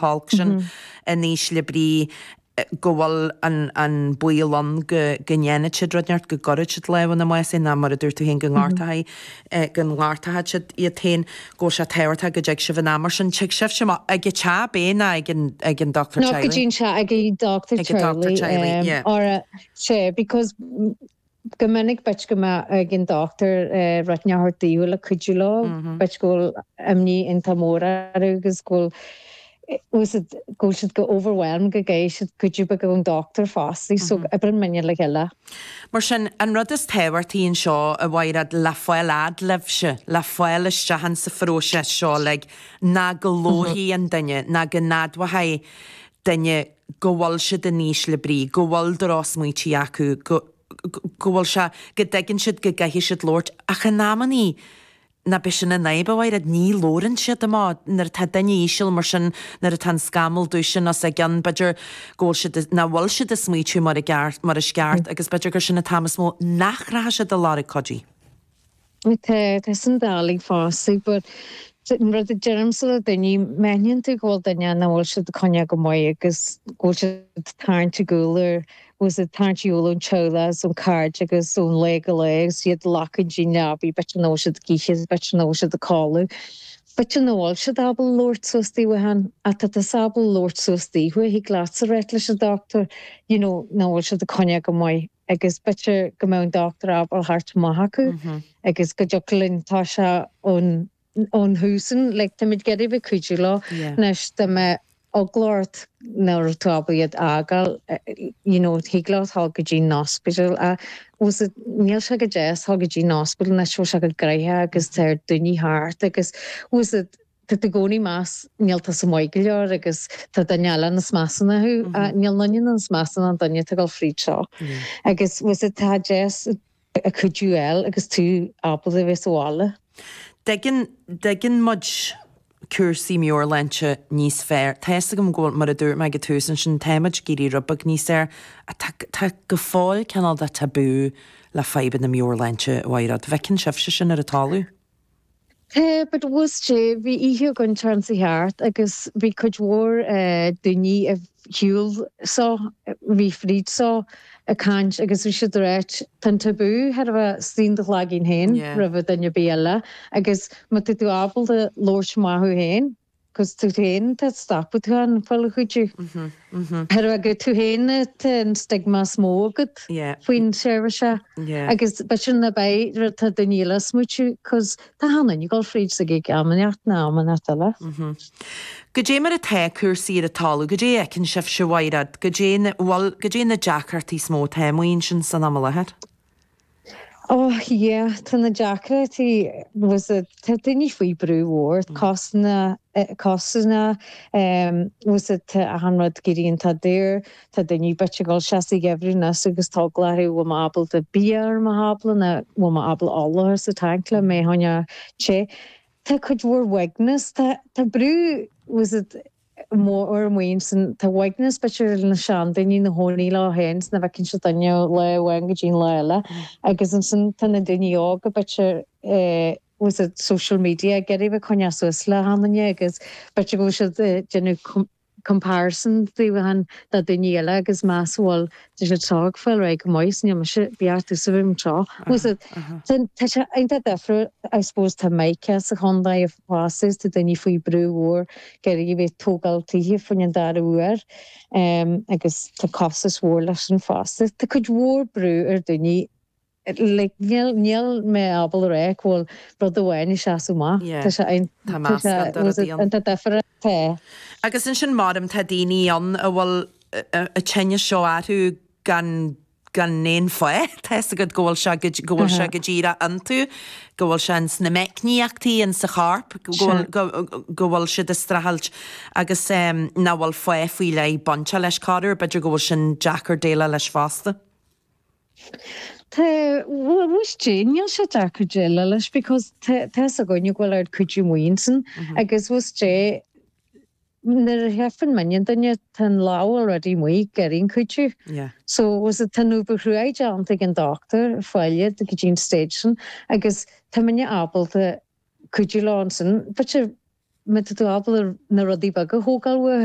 holc sin in ísle brí go bhfuil an baol ann go ndéanfaidh siad rud inteacht, go gcuirfidh siad lámh ina mbás féin ná mar a dúirt tú féin go ngortóchaidh siad iad féin, go bhfuil sé tábhachtach go dtig sibh in am mar sin. Tig sibhse amach ag a' teach, ab é, ná ag an, ag an dochtúir teaghlaigh? Ná go dtéann sé ag a' dochtúir teaghlaigh, ag a' dochtúir teaghlaigh, yeah. Ara, sé, because. Go minic b'fhéidir go mbeadh ag an dochtúir rud inteacht a thabhairt daofa le cuidiú leo. B'fhéidir go bhfuil imní iontach mór orthu agus go bhfuil siad, go bhfuil siad chomh overwhelmed go gcaithfidh siad cuidiú beag ón dochtúir fosta. So oibríonn muidne le chéile. Mar sin, an rud is tábhachtaí anseo, a Mhairéad, le fáil fhad libhse, le fáil isteach insa phróiseas seo uilig, ná go labharfaidh an duine, ná go n-admhóchaidh duine go bhfuil siad in ísle brí, go bhfuil drochsmaoití acu, go, go, go bhfuil sé, go dtuigeann siad go gcaithfidh siad labhairt ach in amannaí nach b'é sin an fhadhb, a Mhairéad, ní labhrann siad amach, nuair atá duine íseal mar sin, nuair atá an scamall dubh sin os a gcionn b'fhéidir go bhfuil siad, nach bhfuil siad ag smaoitiú mar a gceart, mar is ceart agus b'fhéidir gur sin an t-am is mó nach rachadh siad ar lorg cuidigh. Tá, tá sin doiligh fosta but an rud a deirimse le daoine, má aithníonn tú go bhfuil duine nach bhfuil siad ag coinneáil go maith agus go bhfuil siad ag tarraingt ar gcúl, agus ag tarraingt ar gcúl ón teaghlach agus ón chairde agus ón lá go lá agus iad ag glacadh don leabaidh, b'fhéidir nach bhfuil siad ag ithe, is b'fhéidir nach bhfuil siad ag codladh, b'fhéidir nach bhfuil siad ábalta labhairt suas daofa féin, ach tá tusa ábalta labhairt suas daofa, thig leatsa rá leis an dochtúir, you know, nach bhfuil siad ag coinneáil go maith. agus b'fhéidir go mbeadh an dochtúir ábalta a theacht amach chucu agus go dtiocfadh linn toiseacht ón ón thús an like táimid ag iarraidh a bheith ag cuidiú leo anois dá mbeadh eagla ort nach raibh tú ábalta iad a fhágáil you know thig leo dhul go dtí an ospidéal ach fhios agat níl sé go deas dhul go dtí an ospidéal anois bhfuil sé chomh graitheach agus tá oiread daoine thart agus fhios agat Tá tú i gcónaí ag meas, níl tusa maith go leor agus tá duine eile níos measa ná thú. Níl aon duine níos measa ná an duine atá ag dul fríd seo. Agus fosta tá sé deas an cuidiú a fháil agus tú ábalta a bheith sa bhaile. Dtuigeann, dtuigeann muid cúrsaí meabhairshláinte níos fearr. Tá fhios agam go bhfuil, mar a dúirt mé ag an tús ansin, tá muid ag éirí rud beag níos fearr ach tá, tá go fóill cineál de tabú le fadhbanna meabhairshláinte, a Mhairéad. Bhfeiceann sibhse sin ar an talamh? Yeah but is é bhí oíche againn an tseachtain seo thart agus bhí cuid mhór daoiní a shiúil seo, a bhí fríd seo, ag caint agus bhí siad ag ráit tá an tabú thar a bheith istigh in do chloigeann féin roimhe duine ar bith eile agus má tá tú ábalta labhairt amach thú féin, 'Gus tú féin tá stopadh tú féin fáil cuidiú. Ar agaidh tú féin tá an stigma is mó agat faoin seirbhís seo agus ba sin a bheidh rud tá daoine eile a smaoitiú 'gus tá achan duine ag dul fríd sa gig am inteacht ná am inteacht eile. Goidé mar atá cúrsaí ar an talamh? Goidé a fheiceann sibhse, a Mhairéad? Goidé na, bhuel, goidé na deacrachtaí is mó atá? Amuigh ansin san am i láthair. Oh yeah, tá na deacrachtaí, tá's agat, tá daoine faoi brú mhór, cásanna, cásanna, tá's agat, tá achan rud ag éirí iontach daor, tá daoine b'fhéidir ag dul isteach sa gheimhreadh anois agus tá eagla orthu bhfuil mé ábalta bia ar mo thábla ná bhfuil mé ábalta ola a chur sa tanc le mé a choinneáil te. Tá cuid mhór uaigneas, tá, tá brú, tá's agat, mór amuigh ansin, tá uaigneas, b'fhéidir le na seandaoine ina gcónaí leo féin 's ná bhfeiceann siad duine ó lá amháin go dtí an lá eile agus ansin tá na daoine óga b'fhéidir leis an social media ag iarraidh a bheith ag coinneáil suas le achan duine agus b'fhéidir go bhfuil siad ag déanamh comparison daofa féin le daoine eile agus meas bhfuil Tá siad ag fáil ar aghaidh go maith, is níl mise beartaithe sa room seo. Tá sé iontach difriúil, I suppose tá mica sa chontae fosta, tá daoine faoi brú mhór ag iarraidh a bheith ag tógáil tithe fá choinne an dara huair agus tá costas mhór leis sin fosta. Tá cuid mhór brú ar daoine. like, níl mé ábalta a rá go bhfuil rud amháin ag seasamh amach. yeah. Tá sé an, Tá tá sé, meascán de rudaí ann. iontach difriúil, tá. Agus ansin maram tá daoine ann a bhfuil an tinneas seo orthu gan, gan aon fáth. Tá 'fhios agat go bhfuil sé go, go bhfuil sé go díreach iontu, go bhfuil sé ins na meicníochtaí insa chorp, go bhfuil, go, go bhfuil siad ag streachailt agus ehm nach bhfuil fáth faoi leith bainte leis corruair, b'fhéidir go bhfuil sin deacair déileáil leis fosta. Tá, bhuel, tá's agat, níl sé deacair déileáil leis because tá, tá's againn go bhfuil an cuidiú amuigh ansin agus tá's agat, nuair a fheiceann muidinne duine tá an lámh already amuigh ag iarraidh an cuidiú. Yeah. So, tá's agat, tá an obair chruaidh déanta ag an doctor a fháil iad go dtí an stage sin agus tá muidinne ábalta cuidiú leo ansin b'fhéidir má tá tú ábalta na rudaí beaga a thógáil uathu,